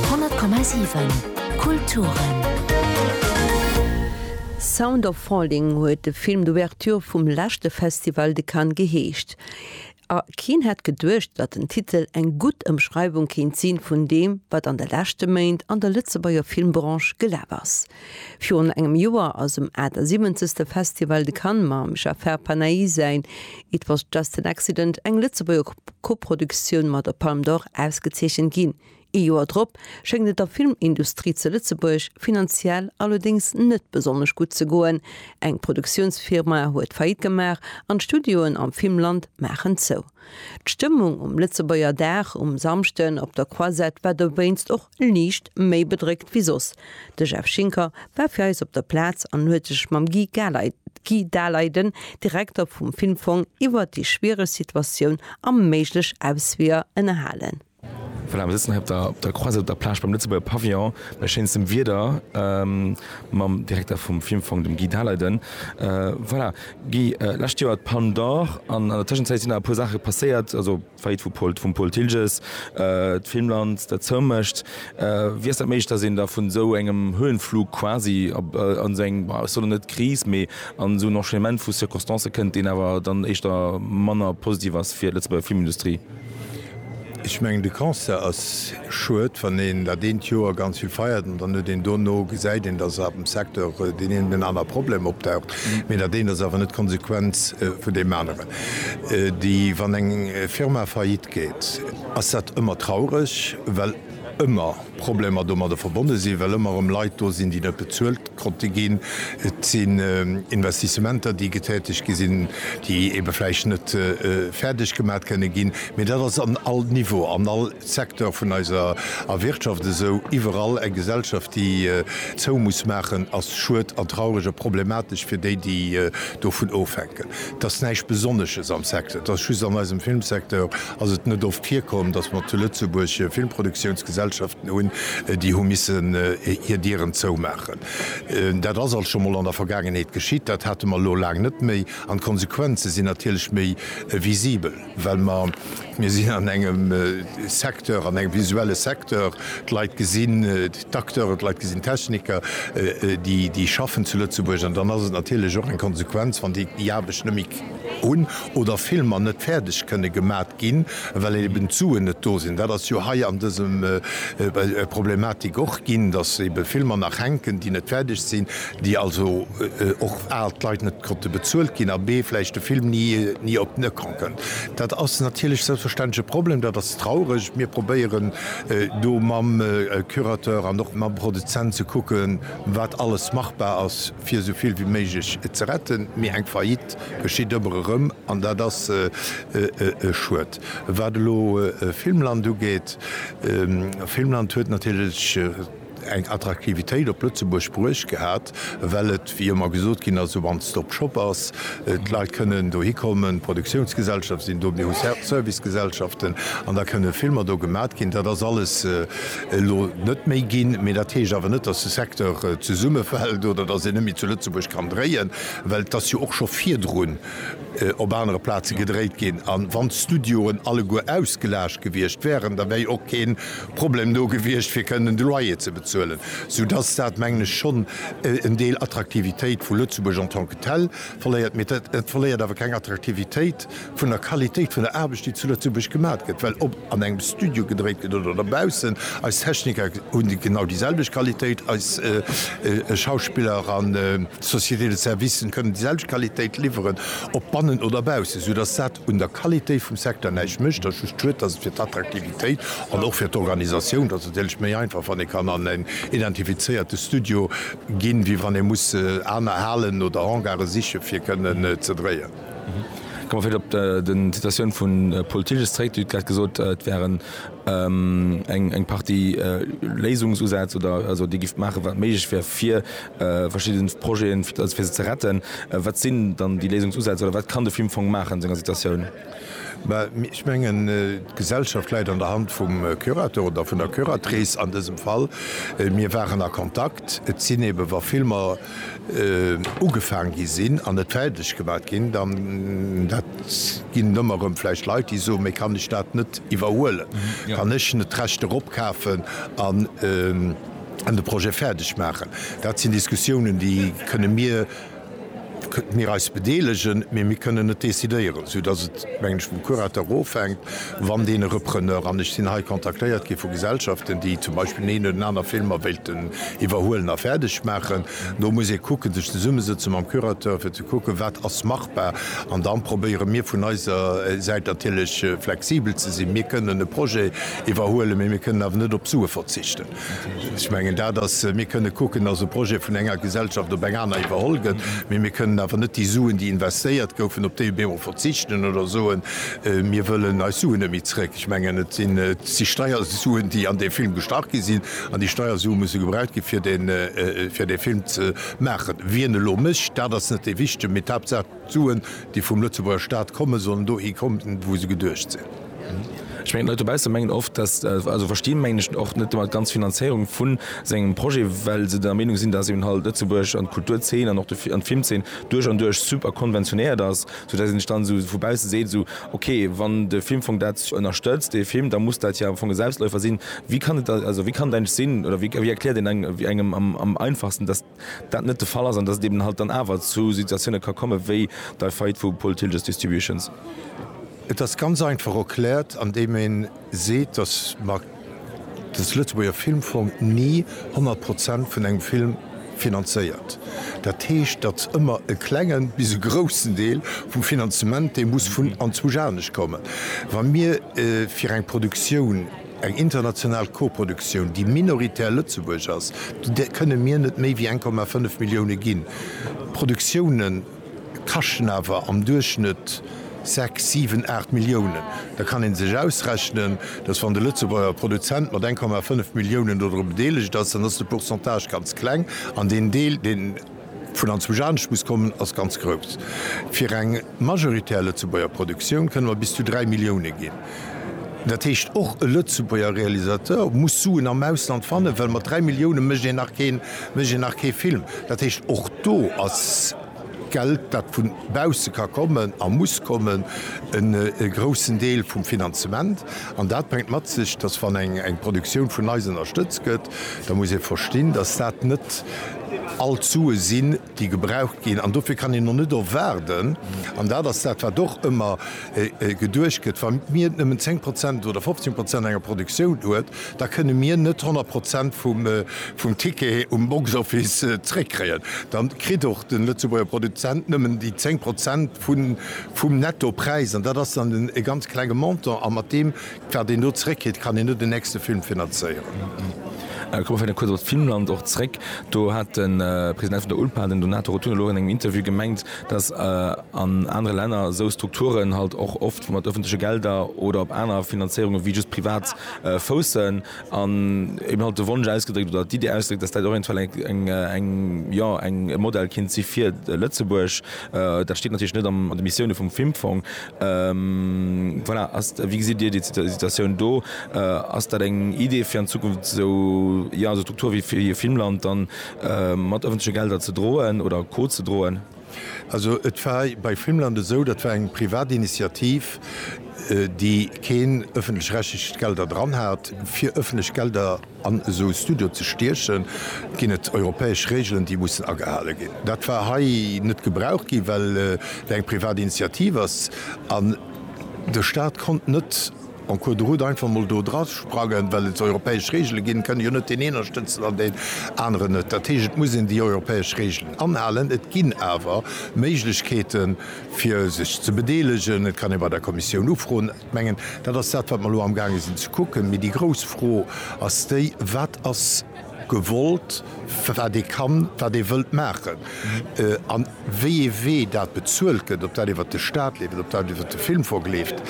100,7 Kulturen. Sound of Falling huet de Film d'Ouverture vum leschte Festival de Cannes geheescht. A keen hätt geduecht, datt den Titel eng gutt Ëmschreiwung kéint si vun deem, wat an de leschte Méint an der Lëtzebuerger Filmbranche gelaf ass. Virun engem Joer ass um 78. Festival de Cannes mam Jafer Panahi säin It was just an accident, eng Lëtzebuerger Koproduktioun, mat der Palme d'Or ausgezeechent ginn. Ee Joer drop schéngt et der Filmindustrie ze Lëtzebuerg finanziell allerdéngs net besonnesch gutt ze goen, eng Produktiounsfirma huet Faillite gemaach an d'Studioen am Filmland maachen zou. D'Stëmmung um Lëtzebuerger Dag um Samschden op der Croisette war dowéinst och Liicht méi bedréckt wéi soss. De Jeff Schinker war fir eis op der Plaz an huet sech mam Guy Galay, Guy Daleiden, Direkter vum Filmfong, iwwert déi schwiereg Situatioun a méiglech Ausweeër ënnerhalen. Voilà, mir sëtzen hei op der, op der Croisette op der Plage beim Lëtzebuerger Pavillon, bei schéinstem Wieder, mam Direkter vum Filmfong, dem Guy Daleiden. Voilà, Guy, lescht Joer d'Palme d'Or an an der Tëschenzäit sinn nach e puer Saache passéiert, also. D'Faillite vu Paul, vum Paul Thilges, d'Filmland dat zou mécht, wéi ass dat méiglech, datt een da vun esou engem Höhenflug quasi an esou eng, ech soen net Kris, mee an esou en Enchaînement vu Circonstancen kënnt, deen awer dann éischter manner positiv ass fir d'Lëtzebuerger Filmindustrie? Ech mengen, de Constat ass, Schued, wann een dat eent Joer ganz vill feiert an dann huet een dono, gesäit een, datt am Secteur deen een oder deen anere Problem opdaucht, mee dat eent ass awer net d'Konsequenz vun deem aneren. Déi, wann eng Firma faillite geet, ass dat ëmmer traureg, well ëmmer Problemer domadder verbonne sinn, well ëmmer erëm Leit do sinn, déi net bezuelt konnte ginn. Et sinn Investissementer, déi getätegt gi sinn, déi ebe vläicht net fäerdeg gemat kënne ginn. Mee dat ass an all Niveau, an all Secteur vun eiser Wirtschaft esou. Iwwerall eng Gesellschaft, déi zou muss maachen, ass schued an traureg a problematesch fir déi, déi dovun ofhänken. Et ass näischt Besonnesches am Secteur, et ass just an eisem Filmsecteur ass et net oft virkomm, datt mer zu Lëtzebuerg Filmproduktiounsgesellschaften hunn, déi hu missen hir Dieren zoumaachen. Dat ass alt scho mol an der Vergaangenheet geschitt, dat hate mer elo laang net méi an d'Konsequenze sinn natierlech méi visibel. Well mer, mir sinn an engem Secteur, an engem visuelle Secteur, d'Leit gesinn d'Acteuren, d'Leit gesinn d'Techniker, déi schaffen zu Lëtzebuerg. An dann ass et natierlech och eng Konsequenz, wann déi déi Aarbecht net méi hunn oder Filmer net fäerdeg kënne gemat ginn, well eeben d'Suen net do sinn. Dat ass jo hei an dësem Problematik och ginn, dass eebe Filmer nach hänken, déi net fäerdeg sinn, déi also och al d'Leit net, Konnte bezuelt ginn a bee vläicht de Film ni op den Ecran kënnt. Dat ass natierlech selbstverständlech e Problem, dat ass traureg. Mir probéieren do mam Curateur an och mam Produzent ze kucken, wat alles machbar ass, fir esou vill wéi méiglech ze retten. Mee eng Faillite geschitt ëmmer erëm an dat ass e Schued. Wat elo Filmland ugeet, Filmland huet natierlech, eng Attraktivitéit op Lëtzebuerg bruecht gehat, well et, wéi ëmmer gesot ginn ass, e One-Stop-Shop ass. D'Leit kënnen dohi kommen, d'Produktiounsgesellschaften sinn do, mir hu Servicegesellschaften an da kënne Filmer do gemat ginn. Dat ass alles elo net méi ginn, mee dat heescht awer net, dass de Secteur zesummefält oder dass een net méi zu Lëtzebuerg kann dréien, well et ass jo och scho virdrun op anere Plaze gedréit ginn. A wann d'Studioen alleguer ausgelaascht gewiescht wäeren, da wär jo och keen, Problem do gewiescht, fir kënnen de Loyer ze bezuelen, sou dass dat, mengen ech, schonn en Deel Attraktivitéit vu Lëtzebuerg en tant que tel verléiert. Mee et verléiert awer keng Attraktivitéit vun der Qualitéit vun der Aarbecht, déi zu Lëtzebuerg gemat gëtt, well ob an engem Studio gedréit gëtt oder dobaussen, eis Techniker hunn genau déi selwecht Qualitéit, eis Schauspiller an d'Société de services kënnen déi selwecht Qualitéit liwweren, ob bannen oder baussen, sou dass dat, un der Qualitéit vum Secteur näischt mécht, ass just schued, dass et fir d'Attraktivitéit an och fir d'Organisatioun, dass et natierlech méi einfach, wann ee kann an en identifizéierte Studio ginn, wéi wann ee muss aner Halen oder Hangare siche fir kënnen ze dréien. Ka mer vläicht op de Citatioun vu Paul Thilges zréck. Dir hutt grad gesot, et wären eng Partie Léisungsusätz oder esou, déi géift maachen, wat méiglech wär, fir verschidden Projeten also fir se ze retten. Wat sinn dann déi Léisungsusätz oder wat kann de Film Fong maachen an senger Situatioun? Bah, ech mengen d'Gesellschaft läit an der Hand vum Curateur oder vun der Curatrice an dësem Fall. Mir waren a Kontakt. Et sinn eben, wa Filmer ugefaang gi sinn an net fäerdeg gemaach ginn, dann, dat ginn ëmmer erëm vläicht Leit, déi soen, Mee kann ech dat net iwwerhuelen? Kann ech net d'Rechter opkafen an, an de Projet fäerdeg maachen. Dat sinn Diskussiounen, déi kënne mir, kënnt mir eis bedeelegen, mee mir kënnen net decidéieren, soudass et, mengen ech, vum Curateur ofhänkt, wann deen e Repreneur, an ech sinn hei kontaktéiert gi vu Gesellschaften, déi zum Beispill deen oder deen anere Film mer wéilten iwwerhuelen a fäerdeg maachen, do muss ee kucken, sech zesummesëtzen mam Curateur, fir ze kucken, wat ass machbar. An da probéiere mir vun eiser Säit natierlech flexibel ze sinn. Mir kënnen e Projet iwwerhuelen, mee mir kënnen awer net op Sue verzichten. Ech mengen dat ass, mir kënne kucken, datt e Projet vun enger Gesellschaft op eng aner iwwerholl gëtt, mee mir kënnen awer net déi Suen, déi investéiert goufen, op déi Büro verzichten oder soen, mir wëllen eis Suen net méi zréck. Ech mengen, et sinn d'Steiersuen, déi an dee Film gestach gi sinn, an déi Steiersue musse gebraucht ginn, fir dee Film ze maachen. Wien elo mécht, dat ass net dee Wichtige, mee d'Haaptsaach, D'Suen, déi vum Lëtzebuerger Staat kommen, sollen dohi kommen, wou se geduecht sinn. Ech mengen, d'Leit dobausse mengen oft, dass, also versti mengen ech, och net ëmmer d'ganz Finanzéierung vu sengem Projet, well se der Meenung sinn, dass eben halt Lëtzebuerg an d'Kulturzeen an och de an d'Filmzeen duerch an duerch super konventionéiert ass, soudatt een sech dann esou vu bausse seet, esou, okay, wann de Filmfong dat ënnerstëtzt, dee Film, da muss dat jo am Fong e Selbstläufer sinn. Wéi kann et da, also wéi kann et eigentlech sinn, oder wéi erkläert een engem am am einfachsten, dass. dat net de Fall ass an datt et eben halt dann awer zu Situatiounen ka kommen, wéi dei Faillite vu Paul Thilges Distributions. Et ass ganz einfach erkläert, andeem een seet, datt mer de Lëtzebuerger Filmfong ni 100 Prozent vun engem Film finanzéiert. Dat heescht, datt ëmmer e klengen bis e groussen Deel vum Finanzement, dee muss vun anzwousch anescht kommen. Wa mir fir eng Produktioun, Eng international Koproduktioun, déi minoritär Lëtzebuerg ass, där kënne mir net méi wéi 1,5 Millioune ginn. Produktioune kaschten awer am Duerchschnëtt sechs, siwen, aacht Milliounen. Da kann ee sech ausrechnen, datt wann de Lëtzebuerger Produzent mat 1,5 Milliounen dodru bedeelegt ass, dann ass de Pourcentage ganz kleng an deen Deel, deen, Vun an zwusch anescht muss kommen, ass ganz grouss. Fir eng majoritär Lëtzebuerger Produktioun kënne mer bis zu 3 Millioune ginn. Dat heescht, och e Lëtzebuerger Realisateur muss Suen am Ausland fannen, well mat 3 Millioune mécht een nach keen, mécht een nach kee Film. Dat heescht, och do ass Geld, dat vu bausse ka kommen a muss kommen, en groussen Deel vum Finanzement. An dat bréngt mat sech, datt, wann eng Produktioun vun eis ënnerstëtzt gëtt, da muss ee verstinn, dass dat net all d'Sue sinn, déi gebraucht ginn. An dofir kann een och net erwaarden, an dat ass dat, wat och ëmmer geduecht gëtt, wa mir nëmmen zéng Prozent oder fofzéng Prozent enger Produktioun huet, da kënne mir net honnert Prozent vum Ticket um Box-Office zréckkréien. Da kritt och de Lëtzebuerger Produzent nëmmen déi zéng Prozent vum Nettopräis, an dat ass dann e ganz klenge Montant, a mat deem Wat een do zeréckkritt, kann een net den nächste Film finanzéieren. Ech komme vläicht nach kuerz op Filmland och zeréck. Do hat de President vun der ULPA, den Donato Rotunno, elo an engem Interview gemengt, datt an anere Länner esou Strukturen halt och oft mat ëffentleche Gelder oder op aner Finanzéierunge wéi just privat foussen, an eben halt de Wonsch ausgedréckt oder d'Iddi ausgedréckt, datt dat eventuell eng, eng, jo, eng, e Modell kéint si fir Lëtzebuerg. Dat steet natierlech net an de Missioune vum Filmfong. Voilà, wéi gesitt Dir déi Situatioun do? Ass dat eng Idee fir an Zukunft esou, jo, esou Strukture wéi fir Filmland dann mat ëffentleche Gelder ze droen oder co-ze-droen? Also et war bei Filmland esou, dat war eng privat Initiativ, déi keen ëffentlech-rechtlecht Gelder dran hat, fir ëffentlech Gelder, An esou Studioe ze stiechen, ginn et europäesch Reegelen, déi mussen agehale ginn. Dat war hei net gebraucht ginn, well et eng privat Initiativ ass an de Staat konnt net en cours de route einfach mol do drasprangen, well et europäesch Reegele ginn. Et kann jo net deen een ënnerstëtzen an deen aneren net. Dat heescht, et muss een déi europäesch Reegelen anhalen. Et ginn awer Méiglechkeeten, fir sech ze bedeelegen. Et kann ee bei der Kommissioun ufroen. Ech mengen, dat ass dat, wat mer elo amgaange sinn ze kucken. Mee déi grouss Fro ass déi, Wat ass gewollt, wat ee kann, wat ee wëllt maachen, an wéi ee Wee dat bezuelt gëtt, ob dat iwwert de Stat leeft, ob dat iwwert de Filmfong leeft,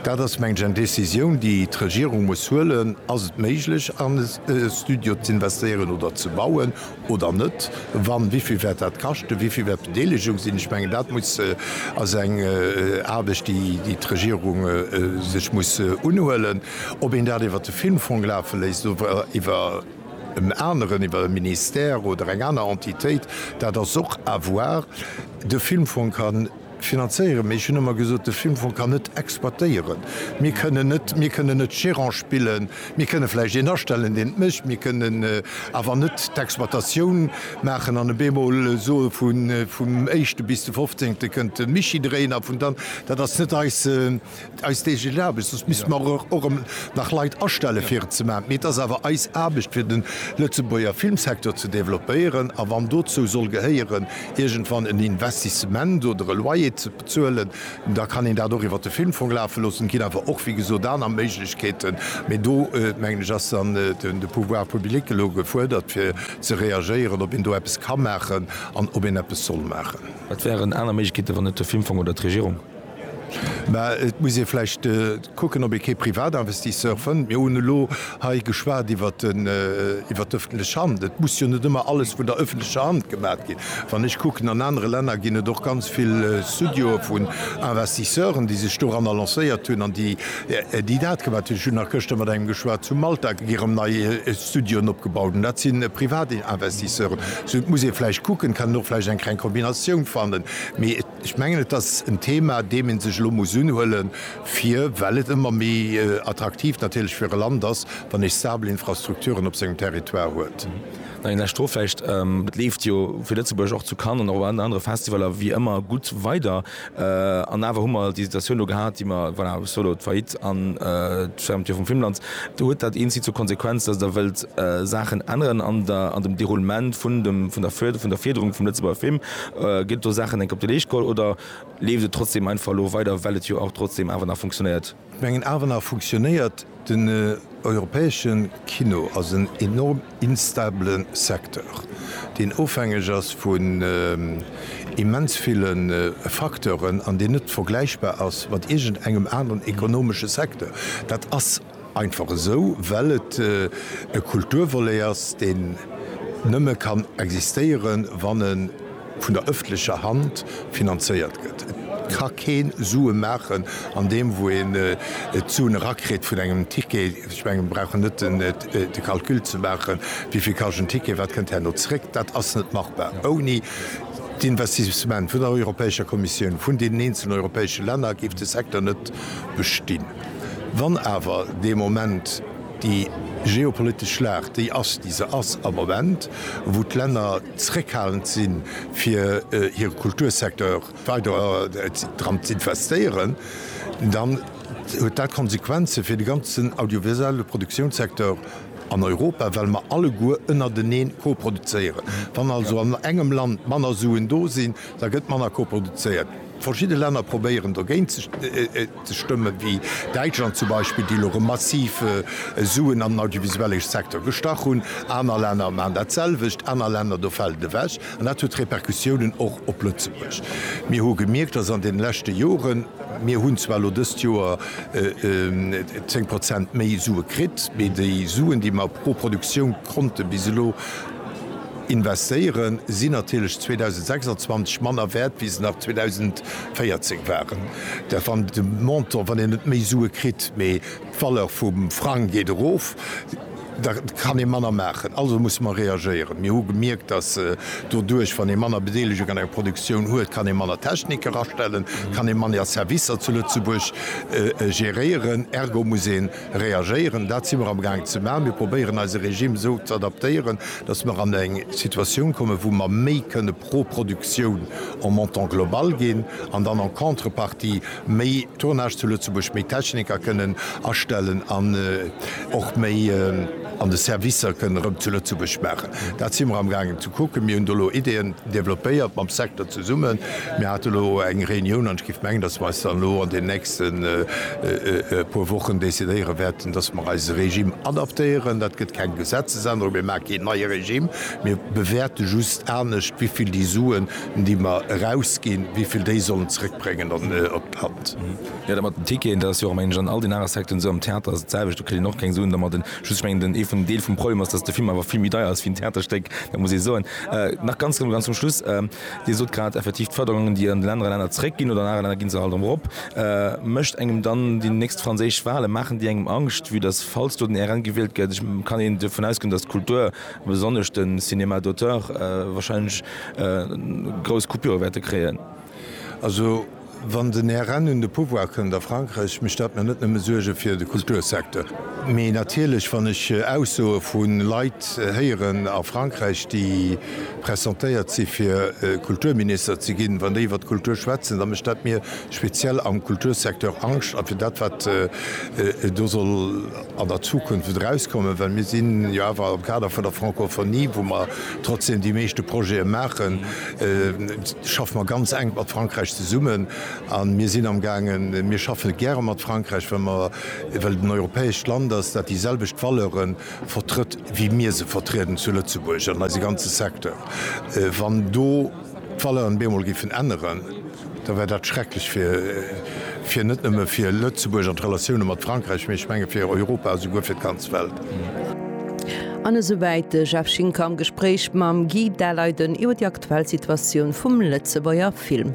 dat ass, mengen ech, eng Décisioun, déi d'Regierung muss huelen. Ass et méiglech, an e Studio z'investéieren oder ze bauen? oder net, wann, wéi vill wäert dat kaschten, wéi vill wäert d'Bedeelegung sinn? Ech mengen, dat muss, ass eng Aarbecht, déi d'Regierung sech muss unhuelen. Ob een dat iwwert de Filmfong lafe léisst oder iwwer en aneren, iwwer e Ministère oder eng aner Entitéit, dat ass och à voir. De Filmfong kann. Finanzéieren, mee ech hunn ëmmer gesot, de Filmfong kann net exploitéieren. Mir kënnen net, mir kënnen net Gerant spillen. Mir kënne vläicht een astellen, deen et mécht, mir kënnen awer net d'Exploitatioun maachen an op eemol soe vum éischte bis de fofzéngte kënnt de Mischi dréien a vun dann. Dat ass net eis. Eis täglich Aarbecht, soss misste mer och erëm nach Leit astellen, fir et ze maachen. Mee et ass awer eis Aarbecht, fir de Lëtzebuerger Filmsecteur ze developpéieren. A wann dozou soll gehéieren, iergendwann en Investissement oder e Loyer ze bezuelen, da kann een dat och iwwert de Filmfong lafe loossen. Et ginn awer och, wéi gesot, aner Méiglechkeeten. Mee do, mengen ech, ass dann de Pouvoir public elo gefuerdert, fir ze reagéieren, ob een do eppes ka maachen an ob een eppes soll maachen. Wat wären aner Méiglechkeeten, wann net de Filmfong oder d'Regierung? Mä et muss ee vläicht kucken, ob ee kee Privatinvestisseur fënnt. Mir hunn elo hei geschwat iwwer d'ëffentlech Hand. Et muss jo net ëmmer alles vun der ëffentlecher Hand gemaat ginn. Wann ech kucken, an anere Länner ginn et och ganz vill Studioe vun Investisseuren, déi sech doranner lancéiert hunn an déi dat gemaat hunn. Ech hunn nach gëschter mat engem geschwat zu Malta, déi erëm nei Studioen opgebaut hunn. Dat si Privatinvestisseuren. Et muss ee vläicht kucken, kann een och vläicht eng kleng Kombinatioun fannen. Ech mengen, et ass en Thema, deem ee sech elo muss unhuele fir, well et ëmmer méi attraktiv natierlech fir e Land ass, wann ee stabel Infrastrukturen op sengem Territoire huet. Nach eng lescht Fro vläicht, Et leeft jo fir Lëtzebuerg och zu Cannes an och an anere Festivaller wéi ëmmer gutt weider. An awer hu mer déi Situatioun elo gehat, déi mer, voilà, ech soe elo d'Faillite an d'Fermeture vum Filmland. Huet dat een Zil zur Konsequenz, datt Der wëllt Saachen änneren an dem Déroulement vun der Fërderung vum Lëtzebuerger Film? Gëtt do Saachen enk op de Leescht geholl oder leeft et trotzdem einfach elo weider, well et jo och trotzdem awer nach funktionéiert? Ech mengen awer nach funktionéiert. Den europäesche Kino ass en enorm instabele Secteur, deen ofhängeg ass vun immens ville Facteuren an deen net vergläichbar ass mat iergend engem aneren ekonomesche Secteur. Dat ass Einfach esou, well et e Kulturvolet ass, deen nëmme kann existéieren, wann e vun der öffentlecher Hand finanzéiert gëtt. Et ka kee Sue maachen an deem, wou een d'Suen erakritt vun engem Ticket. Ech mengen, mir brauchen net de Calcul ze maachen, wéi vill kascht en Ticket, wat kënnt herno zréck. Dat ass net machbar ouni d'Investissement vun der Europäescher Kommissioun, vun deenen eenzelen europäesche Länner, géif de Secteur net bestinn. Wann awer dee Moment déi geopolitesch Schlacht déi ass, déi se ass am Moment, wou d'Länner zréckhalend si fir hire Kultursecteur weider dran z'investéieren, dann huet dat Konsequenze fir de ganzen audiovisuelle Produktiounssecteur an Europa, well mer alleguer ënnerteneen koproduzéieren. Wann also an engem Land manner Suen do sinn, da gëtt manner koproduzéiert. Verschidde Länner probéieren dogéint ze. Stëmme wéi Däitschland zum Beispill, déi elo erëm massiv Suen an den audiovisuellege Secteur gestach hunn, aner Länner maachen dat selwecht, aner Länner, do fält et ewech. An dat huet Repercussiounen och op Lëtzebuerg. Mir hu gemierkt, datt an deene leschte Joren, mir hunn zwar elo dëst Joer 10 Prozent méi Sue kritt, mee déi Suen, déi mer pro Produktioun konnte bis elo investéieren, sinn natierlech 2026 manner wäert, wéi se nach 2000. 14 waren dat wann de Montant, wann een net méi Sue kritt, mee d'Valeur vum Frang geet erof, da kann ee manner maachen. Also musse mer reagéieren. Mir hu gemierkt, dass doduerch, wann ee manner Bedeelegung an enger Produktioun huet, kann ee manner Technik erastellen, kann ee manner Servicer zu Lëtzebuerg geréieren, ergo muss een Reagéieren. Dat si mer am Gaang ze maachen. Mir probéieren eise Regime esou ze adaptéieren, datt mer an eng Situatioun kommen, wou mer méi kënne pro Produktioun en Montant global ginn an dann en contrepartie méi Tournage zu Lëtzebuerg, méi Techniker kënnen astellen an och méi, An de Servicer kënnen erëm zu Lëtzebuerg maachen. Dat si mer amgaangen ze kucken. Mir hunn do elo Ideeën developpéiert mam Secteur zesummen. Mir hate elo eng Reunioun an ech géif mengen, datt mer eis dann elo an den nächste puer Wochen decidéiere wäerten, datt mer eise Regime adaptéieren. Dat gëtt keng Gesetzesännerung. Mir maache keen neie Regime. Mir bewäerte just anescht, wéi vill déi Suen, déi mer erausginn, wéi vill déi sollen zeréckbréngen op d'Land. Jo, dat mat den Ticketen, dat ass jo och mengen ech an all den anere Secteuren esou. Am Theater ass et d'selwecht, do kritt een och keng Suen dermat. Just, ech mengen, den, ee vun den Deel vum Problem ass, datt de Film awer vill méi deier ass wéi en Theaterstéck, dat muss ee soen. Nach ganz zum, ganz zum Schluss, Dir sot grad effektiv, d'Förderungen, déi an den anere Länner zréckginn oder an anere Länner gi se halt erëm erop, mécht engem dann déi nächst franséisch Wahlen, maachen déi engem Angscht, vue dass, falls do den RN gewielt gëtt, ech, kann een dovun ausgoen, dass d'Kultur, besonnesch de Cinéma d'auteur, wahrscheinlech grouss Coupure wäerte kréien? Also. Wann den Här Rehn un de Pouvoir kënnt a Frankräich, mécht dat mer net nëmme Suerge fir de Kultursecteur. Mee natierlech, wann ech Aussoe vu Leit héieren a Frankräich, déi pressentéiert si fir Kulturminister ze ginn, wann déi iwwer d'Kultur schwätzen, da mécht dat mir speziell am Kultursecteur Angscht. A fir dat wat do soll. an der Zukunft wëllt erauskommen, well mir sinn jo awer am Kader vun der Francophonie, wou mer trotzdem déi meeschte Projete maachen, schaffe mer ganz enk mat Frankräich zesummen a mir sinn amgaangen, mir schaffe gäre mat Frankräich, well mer, well et en europäescht Land ass, dat déi selwecht Valeure vertrëtt, wéi mir se vertrieden zu Lëtzebuerg an eise ganze Secteur. Wann do. d'Valeuren bemol géifen änneren, da wär dat schrecklech fir fir net nëmme fir Lëtzebuerg an d'Relatioune mat Frankräich, mee ech menge fir Europa a souguer fir d'ganz Welt. An esou wäit de Jeff Schinker am Gespréich mam Guy Daleiden iwwer déi aktuell Situatioun vum Lëtzebuerger Film.